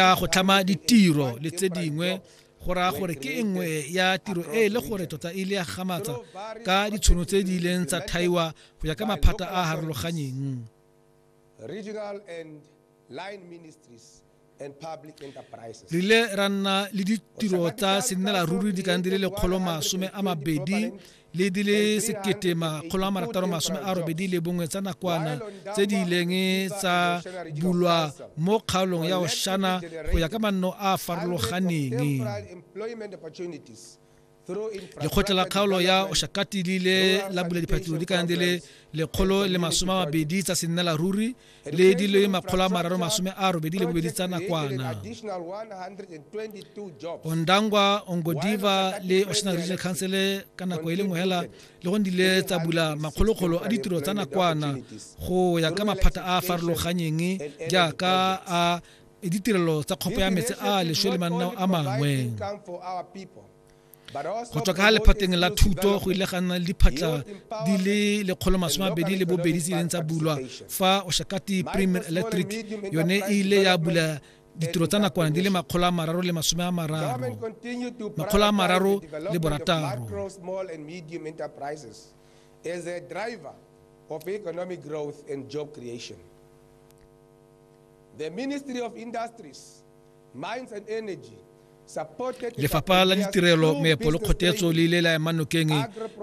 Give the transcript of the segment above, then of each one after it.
ya go tlhama ditiro le tse dingwe go raya gore ke e nngwe ya tiro e e le gore tota e ile ya gamatsa ka ditshono tse di ileng tsa thaiwa go ya ka maphata a a harologanyeng re ile ra nna le ditiro tsa sennelaruri di kang di le lekgolo masome a mabedi le di le sekete makgolo a marataro masome a robedi le bongwe tsa nakwana tse di ileng tsa bulwa mo kgaolong ya oshana go ya ka manno a a farologaneng lekgotla la kgaolo ya oshakati le ile la bula diphatlo di kana di le lekgolo le masome a mabedi tsa sennela ruri le di le makgolo a mararo masome a robedi le bobedi tsa nakwana ondangwa ongodiva le ocean regional council ka nako e le nngwe hela le go dile tsa bula makgolokgolo a ditiro tsa nakwana go ya ka maphata a a farologanyeng jaaka a ditirelo tsa kgopo ya metsi a leswe le mananeo a mangwe go tswa ka ga lephateng la thuto go ile ga nna le diphatla di le lekgolo masome abedi le bobedi tse ileng tsa bulwa fa oshakati premier electric yone e ile ya bula ditiro tsa nakwana di le makgolo a mararo le masome a mararo makgolo a mararo le borataro as a driver of economic growth and job creation. The Ministry of Industries Lefapha la Ditirelo, Meepo le Kgotetso le ile la ema nokeng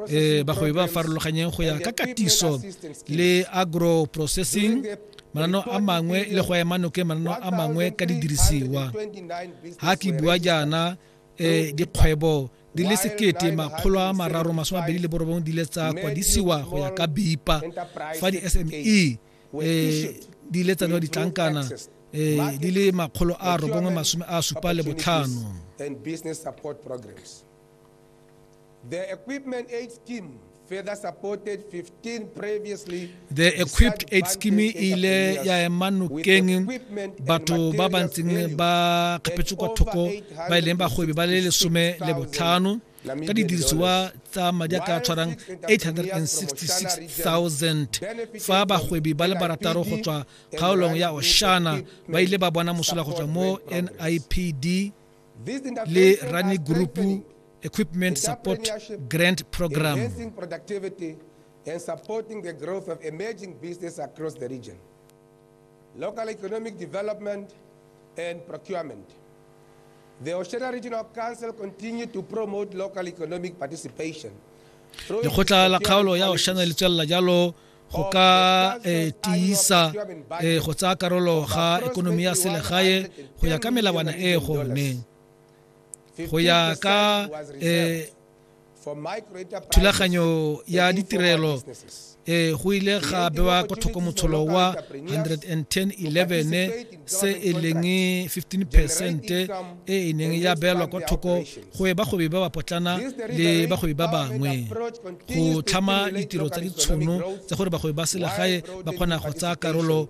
eh, bagwebi ba farologanyeng go ya ka katiso le agro processing mananeo a mangwe le go ema nokeng mananeo a mangwe ka didirisiwa ha ke bua jaana eh, dikgwebo di le sekete makgolo a mararo masome mabedi le borobong di le tsa kwadisiwa go ya ka bipa fa di-sme eh, di ile tsa newa ditlankana eh, di le makgolo a robongwe masome a supa le botlhano The equipment aid scheme further supported 15 previously the equipped aid scheme e ile ya ema nokeng batho ba ba ntseng ba kgapetswe kwa thoko ba e leng bagwebi ba le lesome le botlhano ka didirisiwa tsa madi a ka tshwarang 866000 fa bagwebi ba le barataro go tswa kgaolong ya oshana ba ile ba bona mosola go tswa mo nipd le rani group equipment support grant program and supporting the growth of emerging business across the region. Local Economic Development and Procurement. The Oshera Regional Council continued to promote local economic participation. lekgotla la kgaolo ya oshana le tswelela jalo go ka eh, tiisa eh, go tsaya karolo ga ekonomi ya selegae go ya ka melawana e e gonneng go ya ka eh, thulaganyo ya ditirelo e go ile ga bewa kwa thoko motsholo wa 11011 se e leng 15 percent e e neng ya beelwa kwa thoko go e bagwebi ba ba potlana le bagwebi ba bangwe go tlhama ditiro tsa ditshono tsa gore bagwebi ba selegae ba kgona go tsaya karolo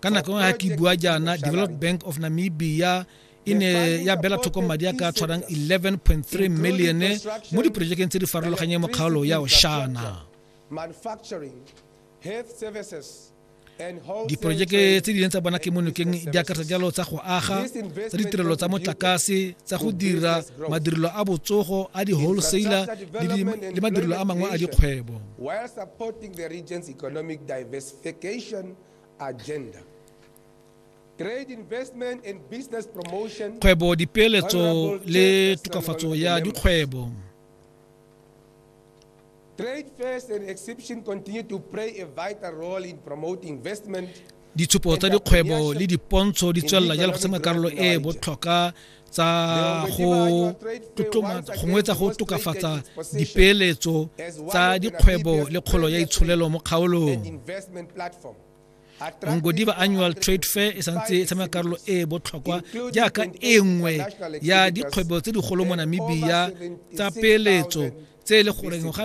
ka nako nngwe ga ke bua jaana develop bank of namibia e ne ya bela thoko madi a ka tshwarang 11.3 million mo diporojekeng tse di farologanyeng mo kgaolo ya oshana diporojeke tse di leng tsa bona ke mo nokeng di akaretsa jalo tsa go aga tsa ditirelo tsa motlakase tsa go dira madirelo a botsogo a di-wholesaler le madirelo a mangwe a dikgwebo agenda. Trade investment and business promotion. Kgwebo dipeeletso le tokafatso ya dikgwebo. Trade fairs and exhibition continue to play a vital role in promoting investment. Ditshupo tsa dikgwebo le dipontsho di tswelela jalo go tsena karolo e e botlhokwa tsa go tlotlomatsa gongwe tsa go tokafatsa dipeeletso tsa dikgwebo le kgolo ya itsholelo mo kgaolong ngodiba annual trade fair e santse e tshameka karolo e e botlhokwa jaaka e nngwe ya dikgwebo tse digolo mo namibia tsa peeletso tse e le goreng ga